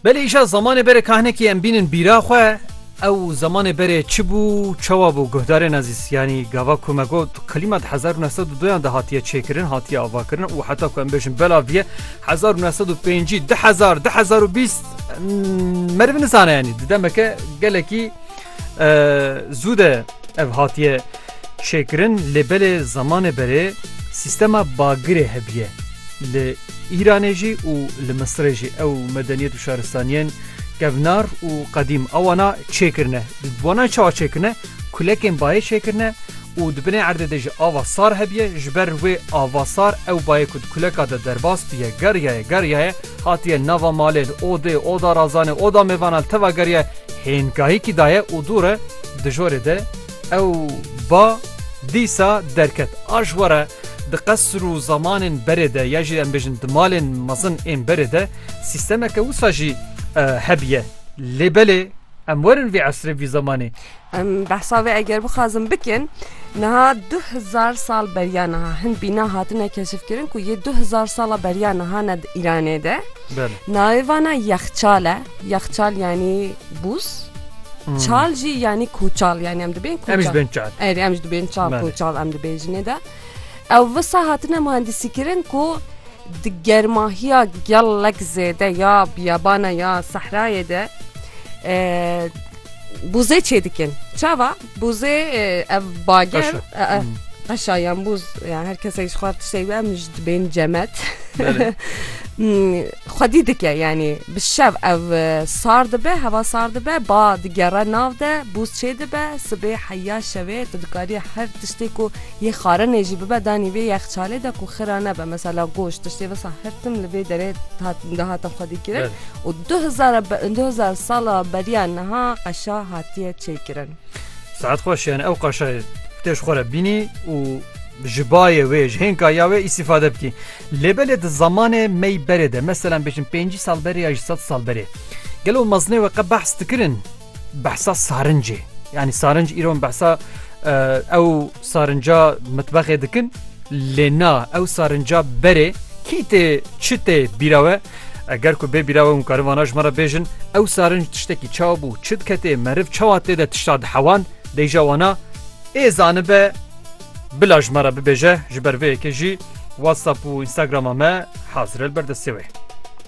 Belê îşa zamanê berê kahnekî em bînin bîra xwe ew zamanê berê çi bû çawa bû guhdarên ezîz yanî gava ku me got qilîma di hezar û neh sed û doyan de hatiye çêkirin hatiye avakirin û heta ku em bêjin bela viye hezar û neh sed û pêncî di hezar di hezar û bîst meriv nizane yanî di demeke gelekî zû de ev hatiye çêkirin lê belê zamanê berê sîstema bagirê hebiye li Îranê jî û li Misirê jî ew medeniyet û şaristaniyên kevnar û qedîm a wana çêkirine. Di wana çawa çêkirine? Kulekên bayê çêkirine û di binê erdê de jî ava sar hebiye. Ji ber wê ava sar ew bayê ku di kuleka de derbas biye geriyaye geriyaye hatiye nava malê li odê, oda razanê, oda mêvanan li teva geriyaye hênkahîkî daye û dûre di jorê de Ew ba dîsa derket. A ji were di qesr û zamanên berê de ya jî em bêjin di malên mezin ên berê de sîstemeke wisa jî hebîye. Lê belê em werin vî esrê vî zemanê. Em behsa wê eger bixwazin bikin niha du hezar sal beriya niha hin bîna hatine keşifkirin ku yê du hezar sala beriya niha ne di Îranê de navê vana yexçal e yexçal yanî Bûs Çal jî yanî kûçal yanî em dibên kûçal. Em ji bên çal. Erê em ji dibên çal kûçal em dibên jinê de. Ew visa hatine mühendisîkirin ku di germahiya gelek zêde ya biyabana ya sehrayê de bûzê çê dikin. Çava Bûzê ev bager qeşa yan bûz yan her kesek ji xwe tiştê we min ji dibên cemet xwedî dike yanî bi şev ev sar dibe heva sar dibe ba digere nav de bûz çê dibe sibê heya şevê tu dikarî her tiştê ku yê xarinê jî bibe danî vê yexçalê de ku xira nebe mesela goş tiştê vesa her tim li vê derê dihate xwedî kirin û 2000 sala beriya niha qeşa hatiye çêkirin kirin. Saet xweş yani ew qaşayê tê ji xwe re bînî û ji bayê wê ji hênka ya wê îstîfade bikî. Lê belê di zamanê mey berê de meselan bêjin pêncî sal berê ya ji sed sal berê. Gelo mezinê we qe behs dikirin behsa sarincê. Yani sarinc îro behsa ew Sarinca mitbexê dikin lê na ew sarinca berê kî tê çi tê bîra we eger ku bê bîra we hûn karin vana ji me re bêjin ew sarinc tiştekî çawa bû çi diketê meriv çawa tê de tişta dihewan deyja wana ê zanibe bila ji me re bibêje ji ber vê yekê jî whatsapp û instagrama me hazir el berdestê wê.